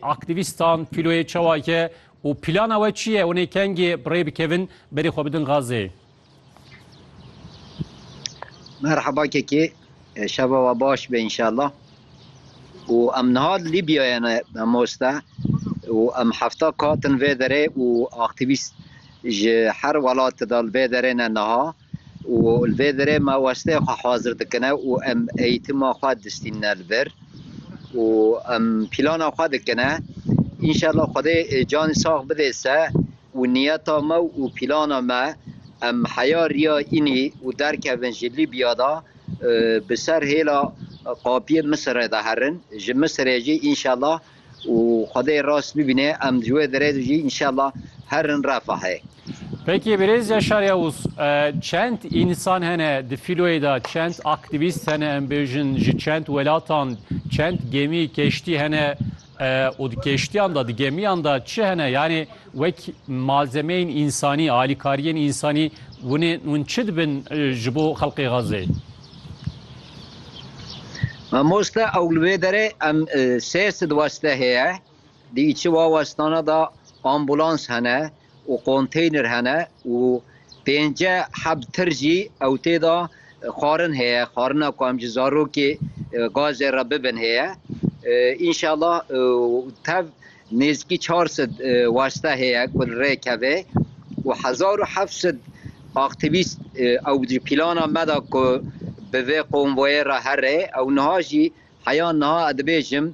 Aktîvîstan kîloyê çawa ye û plana we çi ye? Hûnê kengê bi rê bikevin berî xwe bidin Gazeyê? Merhaba Kekê, şeva we baş be înşallah. Û em niha li Lîbyayê ne mamoste û em hefta kat in vê derê û aktîvîst ji her welate de li vê derê ne niha. û li vê derê me wasteyê xwe hazir dikine û em eyitima xwe distînine li vir û em pîlana xwe dikine. Înşella Xwedê canê sax bidê se û niyeta me û pîlana me em heya riya înî û derkevin ji Lîbya de bi ser hêla qapiyê Misirê de herin, ji Misirê jî înşella û xwedê rast bibîne em ji wê derê de jî înşallah herin refahê. Peki Birêz Yaşar Yavuz, çend însan hene di fîloyê de, çend aktîvîst hene em bêjin ji çend welatan, çend gemî, keştî hene û di keştiyan de, di gemiyan de çi hene? Yanî wek malzemeyên însanî, alîkariyên însanî winê hûn çi dibin ji bo xelkê Xezê? Mamoste ew li wê derê em sê sidweste heye dî çi wawestana da ambulans hene û konteyner hene û pênce heb tir jî ew tê da xwarin heye xwarina ku em ji zarokê gazê re bibin heye inşallah tev Nêzîkî çar sed waste heye ku li rê keve û hezar û heft sed aktîvîst ew jî plana me da ku bi vê konvoyê re here ew niha jî heya niha ez dibêjim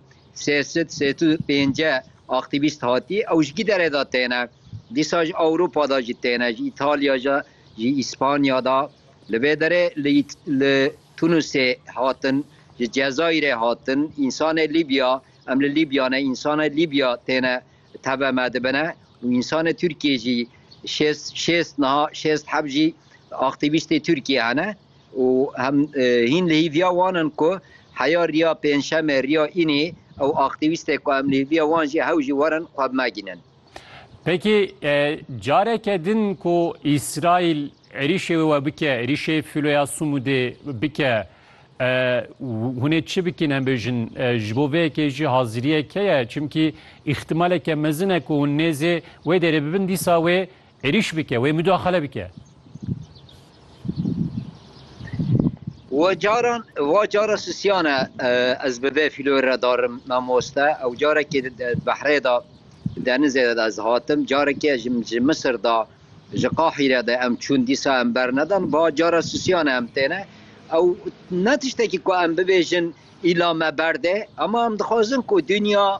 sê sed sêt û pênce aktîvîst hatî ew ji giderê da têne dîsa ji Ewropa da jî têne ji Îtalya da ji Îspanya da li vê derê li Tunusê hatin ji Cezayirê hatin însanê Lîbya Em li Lîbya ne, însanê Lîbya têne teve me dibine û însanê Tirkiyê jî şêst şêst niha şêst heb jî aktîvîstê Tirkiyê hene û em hîn li hîviya wan in ku heya riya pêncşemê riya înê ew aktîvîstê ku em li hîviya wan jî hew jî werin xwe bi me gînin. Peki careke din ku Îsraîl êrîşê wê we bike, êrîşê fîloya Sumudê bike, hûn ê çi bikin em bêjin ji bo vê yekê jî haziriyek heye? Çimkî îxtîmaleke mezin e ku hûn nêzê wê derê bibin dîsa wê Êrîş bike, wê mudaxale bike. We caran va cara sisiyan e ez bi vê fîloyê re darim mamoste. Ew carekê di behrê de denizê de ez hatim. Carekê ji ji Misir de ji Qahîre de em çûn dîsa em bernedan. Va cara sisiyan e em têne. Ew ne tiştekî ku em bibêjin îla me berdê. Ema em dixwazin ku dinya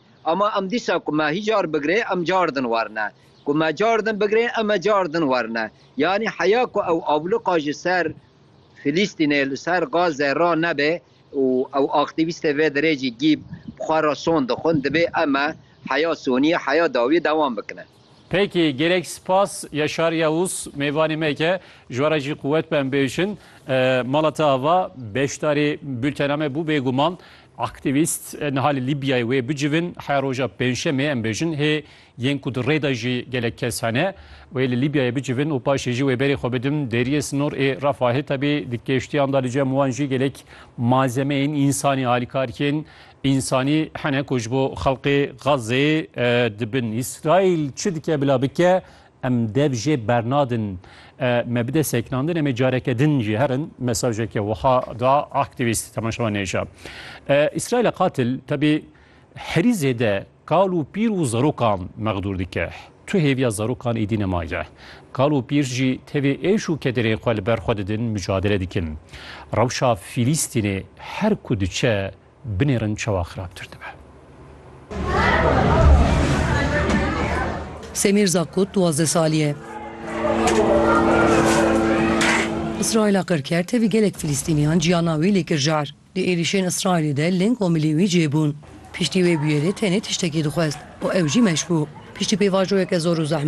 Ama em dîsa ku me hî car bigirê em car din werine. Ku me car din bigirê em e car din werine. Yanî heya ku ew abluqa ji ser Filîstînê li ser Gaze ra nebe û ew aktîvîstê vê derê jî gîb bi xwe re son dixwin dibê em e heya soniyê, heya dawiyê dewam bikine. Peki gerek spas Yaşar Yavuz mêvanê me ke ji were jî quwet be em bêjin. Mala te ava beşdarê bültena me bû bêguman. Aktîvîst niha li Lîbyayê wê bicivin heya roja pêncşemê em bêjin hê yên ku di rê de jî gelek kes hene wê li Lîbyayê bicivin û paşê jî wê berê xwe bidin deriyê sinor ê Refahê. Tevî di keştiyan de li cem wan jî gelek malzemeyên însanî alîkar yên. Însanî hene ku ji bo xelkê Xazzê dibin. Îsraîl çi dike bila bike em dev jê bernadin. Me bide sekinandin em ê careke din jî herin mesajeke wiha da aktîvîst temaşevanê ji Îsraîla qatil tevî herî zêde Kal û pîr û zarokan mexdûr dike. Tu hêviya zarokan êdî nemaye. Kal û pîr jî tevê êş û kederên xwe li ber xwe didin, mucadele dikin. Rewşa Fîlîstînê her ku diçe binêrin çawa xirabtir dibe. Semîr Zakut duwazdeh salî ye. Îsraîla qir kir tevî gelek Fîlîstîniyan ciyana wî lê kir jar. Di êrîşên Îsraîlê de ling û milî wî cih bûn. Piştî wê bûyerê tenê tiştekî dixwest û ew jî meş bû. Piştî pêvajoyeke zor û zehmet,